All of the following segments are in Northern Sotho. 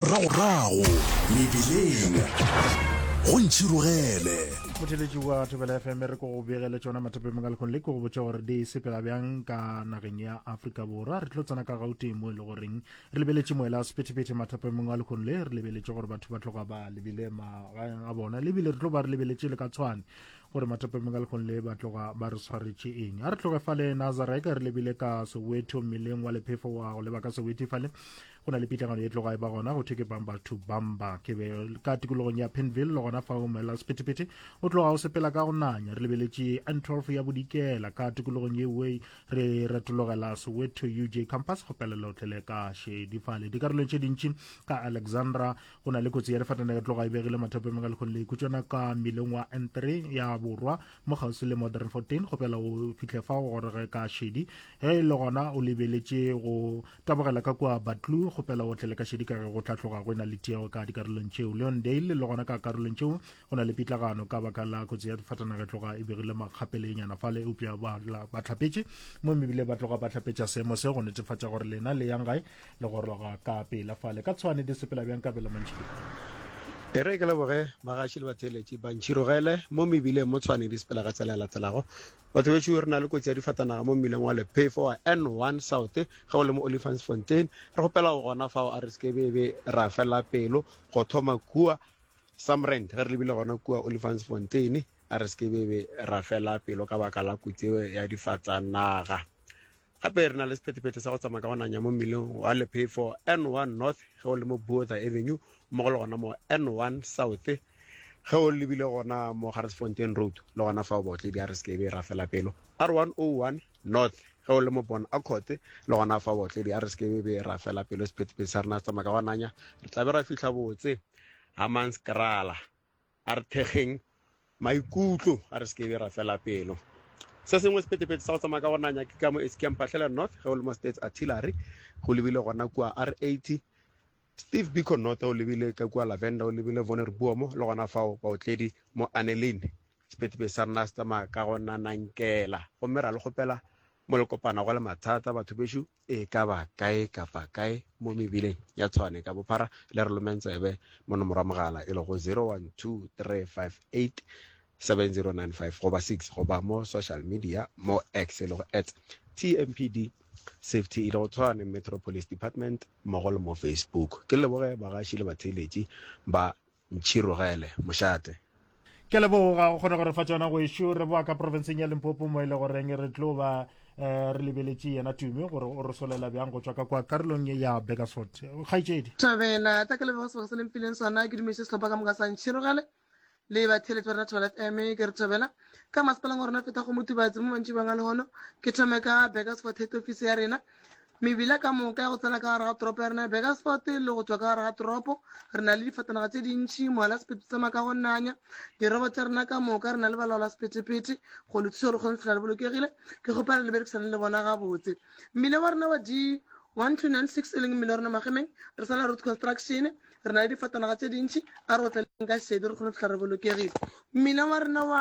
Ragorago mebileng go ntšhirogele. motheletši wa thobela fm re ko go begele tšona mathapemong ka lekgong le ke go botša gore di sepela bjang ka nageng ya afrika borwa re tlo tsena ka gauteng mo e le goreng re lebeletše moela sephetephete mathapemong a lekgong le re lebeletše gore batho ba tloga ba lebile magaeng a bona le ebile re tlo ba re lebeletše le ka tshwane gore mathapemong a lekgong le ba tloga ba re tshwaretše eng a re tloge fale nazarek re lebile ka soweto mmeleng wa lephefo wa go leba ka soweti fale go na le pitlagano e tloga e ba gona go thwe ke bamba to bamba ke be ka tikologong ya penville le gona fa o mela sephethephethe o tloga o sepela ka go nanya re lebeletše n 12 ya bodikela ka tikologong yewe re retologela soweto uj campus go pelela o tlele ka šedi fale dikarolong tše dintši ka alexandra go na le kotsi ya lefatana e tloga e begile mathapemeng a lekgong le ikutšana ka mmileng wa n 3 ya borwa mo kgauswi le modern 14 go pela o fitlhe fa o gorege ka šedi ge e le gona o lebeletše go Tabogela ka kua Batlu, kgopela o tle le ka šedi ka ge go tla tloga go ena le tiego ka dikarolong tšeo. Leondale, le gona ka karolong tšeo go na le pitlagano ka baka la kotsi ya difatanaga e tloga e begile makgapele e nyana fale eupša ba ba tlhapetše mo mebile ba tloga ba tlhapetša seemo se go netefatša gore lena le yang gae le goroga ka pela fale ka tshwane di sepela bjang ka bela mantšhile E re ke leboge bagaši le batheeletši ba ntšhirogele mo mebileng mo tshwane di sepela ka tsela e latelago Batho bešo, re na le kotsi ya difatanaga mo mmileng wa Lephefo wa N1 South ge o le mo Olifantsfontein. Re kgopela o gona fao a re seke be be ra fela pelo go thoma kua Samrand ge re lebile gona kua Olifantsfontein, a re seke be be ra fela pelo ka baka la kotsi eo ya difatanaga. Gape re na le sephethephethe sa go tsamaya ka go nanya mo mmileng wa lephefo N1 North ge o le mo Botha Avenue mmogo le gona mo N1 South ge o lebile gona mo Garisfontein Road le gona fa o botledi a re se ke be ra fela pelo R101 North ge o le mo Bon Accord le gona fa o botledi a re se ke be ra fela pelo sephethephethe sa rena se tsamaya ka go nanya re tla be ra fihla botse Hammanskraal A re thekgeng maikutlo, a re se ke be ra fela pelo. Se sengwe sephethephethe sa go tsamaya ka go nanya ke ka mo SK Mpatlhela North ge o le mo States Artillery go lebile gona kua R80, Steve Biko North o lebile ka kua Lavender o lebile Vonner Buomo le gona fao baotledi mo Anelin. Sephethephethe sa rena se tsamaya ka go nanankela gomme ra le kgopela molekopana go le mathata batho bešo. E ka ba kae kapa kae mo mebileng ya Tshwane ka bophara, le re lomeng tsebe mo nomoro ya mogala e lego 0123587095 goba 6 goba mo social media mo X e lego at TMPD Safety e lego Tshwane Metro Police Department mmogo le mo Facebook. Ke leboge bagaši le batheeletši ba Ntšhirogele, mošate. Ke a leboga go kgona go re fa tsona gwešu re boa ka porofenseng ya limpopo mo e le goreng re tlo ba um re lebeletše yena tumi gore o re solela bjang go tswa ka kwa karolong ye ya begasfort kgaitsedi thabela tla ke lebega sebaka se lempileng sona ke dumeše sehlopha ka moka sa ntšhirogale le batheletsi ba rena thobela f m ke re thobela ka masepaleng wa rona feta go motubatsi mo mantši banga lehono ke thome ka begasfort head office ya rena Mebila ka moka ya go tsena ka gare ga toropo ya rena ya Burgersfort le go tšwa ka gare ga toropo, re na le difatanaga tše dintši, mohala sephetho tsa maka go nanya, dirobo tša rena ka moka, re na le balaola sephetephete go le thuša gore kgone fela le bolokegile. Ke kgopela le berekisane le bona gabotse. Mmila wa rena wa D 1296 e leng mmila wa rena magemeng, re sala road construction, re na le difatanaga tše dintši, a re go tlaleng ka šedi re kgone fela re bolokegile. Mmila wa rena wa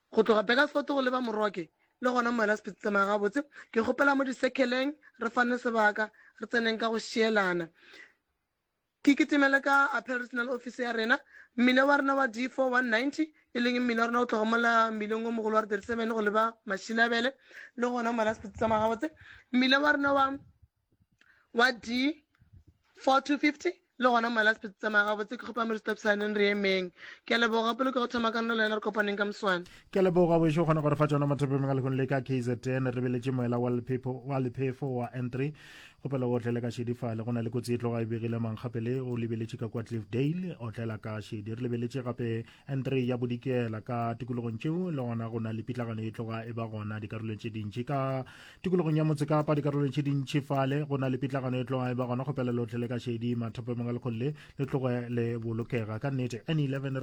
Go tloga Bakersfort go leba Moroke, le gona mo wena se phetse tsamaya gabotse, ke kgopela mo disekheleng re fane sebaka, re tseneng ka go šielana. Ke kitimele ka Appeal Regional Office ya rena, mmila wa rena wa D4-190, e leng mmila wa rena o tloga mola mmileng o mogolo wa R37 go leba Mashilabele, le gona mo wena se phetse tsamaya gabotse, mmila wa rena wa. wa D4-250 le gona mma la sephetsi tsamaya gabotse ke kgopa moristo psaneng re emeng ke a leboga pele ke go thoma kanolo yena re kopaneng ka moswane ke a leboga bošo o kgona gore fa tsona mathopeng a lekgong le ka kzn re beletše moela wa lephepho wa lephefo wa n3 kgopela o otlele ka šedifale go na le kotsi e tloga e begile mangkgapele o lebeletše ka kwa cliffdale otlela ka šedi re lebeletše gape n3 ya bodikela ka tikologong tšeo le gona go na le pitlagano e tloga e ba gona dikarolong tše dintši ka tikologong ya motse kapa dikarolong tše dintši fale go na le pitlagano e tloga e ba gona go pela lotlhe le ka šedi mathapamong a lekgole le tloge le bolokega ka nnete n 11